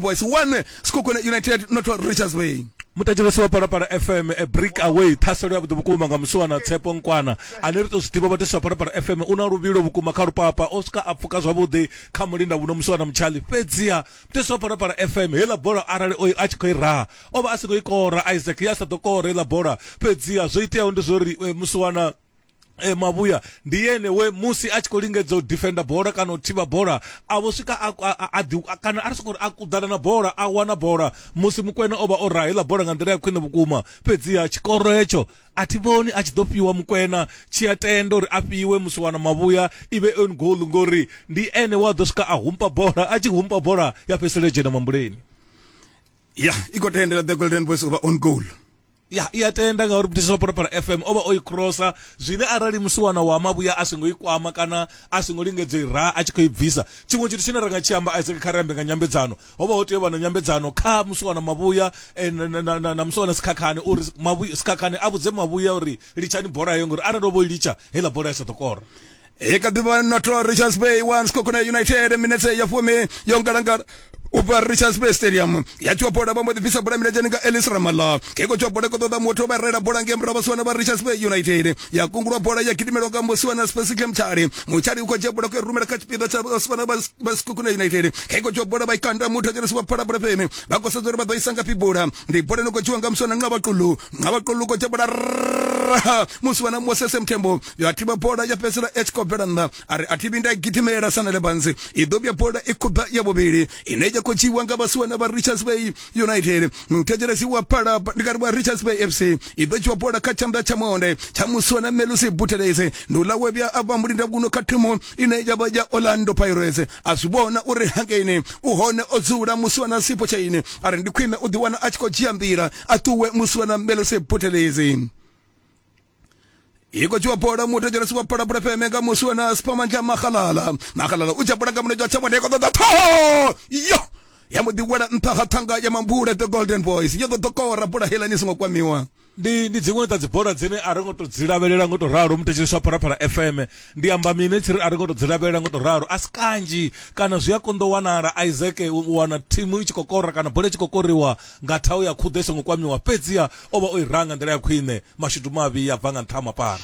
boys 1 Sekhukhune United not Richards Bay mutangeleso wa palapala fm a break away ṱhaselo ya vhuḓi vhukuma nga musiwana tshepo nkwana ane ri tou zwi ḓivha vhatesi wa palapala fm u na luvhilo vhukuma kha lupapa o swika a pfuka zwavhuḓi kha mulinda vhuno musiwana mutshali fhedziha mutesi wa palapala fm heiḽa bola arali oyo a tshi khou i raha o vha a si khou i kora isaac ya sa ḓo kora heiḽa bola fhedziha zwo iteaho ndi zwo ri musiwana e, mavhuya ndi yene we musi a tshi khou lingedza u defenda bola kana u thivha bola a vho swika a- a- a- a ḓi- a- kana a ri soko ri a kuḓana na bola a wana bola musi mukwena o vha o raha heiḽa bola nga nḓila ya khwine vhukuma fhedziha tshikoro hetsho a thi vhoni a tshi ḓo fhiwa mukwena tshi a tenda uri a fhiwe musi wana mavhuya i vhe on goal ngori ndi ene wa ḓo swika a humpa bola a tshi humpa bola ya fhedzisela yo dzhena mambuleni ya i khou tendela the golden boys u vha on goal ya i a tenda ngauri muthishi wa phalaphala fm o vha o i crossa zwine arali musiwana wa mavhuya a songo i kwama kana a songo lingedza i ra a tshi khou i bvisa tshiṅwe tshithu tshine ra nga tshi amba isaac kha ri ambe nga nyambedzano ho vha ho tea u vha na nyambedzano kha musiwana mavhuya eh, na- na- na- na- na musiwana sikhakhane uri Mavhuya- sikhakhane a vhudze mavhuya uri litshani bola heyo ngori arali o vho i litsha heiḽa bola ya sa ḓo kora i kha ḓi vha na to richards bay one skokona united minetse ya fumi yo ngalangala ubva richards bay stadium ya tshiwa bola vha mbo ḓi bvisa bola milenzheni nga elis ramala keko tshiwa bola ko ṱoḓa muthu vha rela bola nge murahu vhasiwana vha richards bay united ya kungulwa bola ya gidimelwa nga musiwana specicle mutshali mutshali u khou dzhia bola ku rumela kha tshipiḓa tsha vhasiwana vha sikukuna united keko tshiwa bola vha ikanda muthu dzhenisi vha phala bola fheme vha khou sedza uri vha ḓo isa ngafhi bola ndi bola ni khou dzhiwa nga musiwana nxa vhaqulu nxa vhaqulu u khou dzhia bola musiwana mosese muthembo yo a thivha bola ya fhedzisela i tshi khou bvela nnḓa a ri a thi vhinda gidimela sa nelebanzi i ḓo vhuya bola i khubva ya vhuvhili ine ya khou dzhiiwa nga vhasiwana vha richards bay united muthetshelesi wa phala ndi kari wa richards bay fc i ḓo dzhiwa bola kha tshanḓa tsha monde tsha musiwana melusi butelese ndi uḽa we vhuya a vha mulinda kuno kha thimu ine ya vha ya orlando pirates a zwi vhona uri hangeini u hone o dzula musiwana sipo tshaine a ri ndi khwine u ḓiwana a tshi khou dzhia nḓila a ṱuwe musiwana melusi butelese hi khou tshiwa bola muthu dzhenesi wa bola bola feme nga musi wena sipamanzha mahalala mahalala u tsha bola nga munetshi wa tsha mwana i khou ṱoḓa ṱhoho yo ya mbo ḓi wela nṱha ha thanga ya mambule the golden boys yo ḓo ḓo kora bola heiḽani i songo kwamiwa ndi ndi dziṅwe dza dzibola dzine a ri ngo to dzi lavhelela ngo to ralo muthetsheli swa phalaphala fm ndi amba mine tshi ri a ri ngo to dzi lavhelela ngo to ralo a si kanzhi kana zwi a konḓa u wanala isaac u wana thimu i tshi khou kora kana bola i tshi khou koriwa nga thaho ya khuḓo i songo kwamiwa, fhedziha o vha o i ranga nḓila ya khwiṋe, mashudu mavhi a bva nga nṱha ha mapara.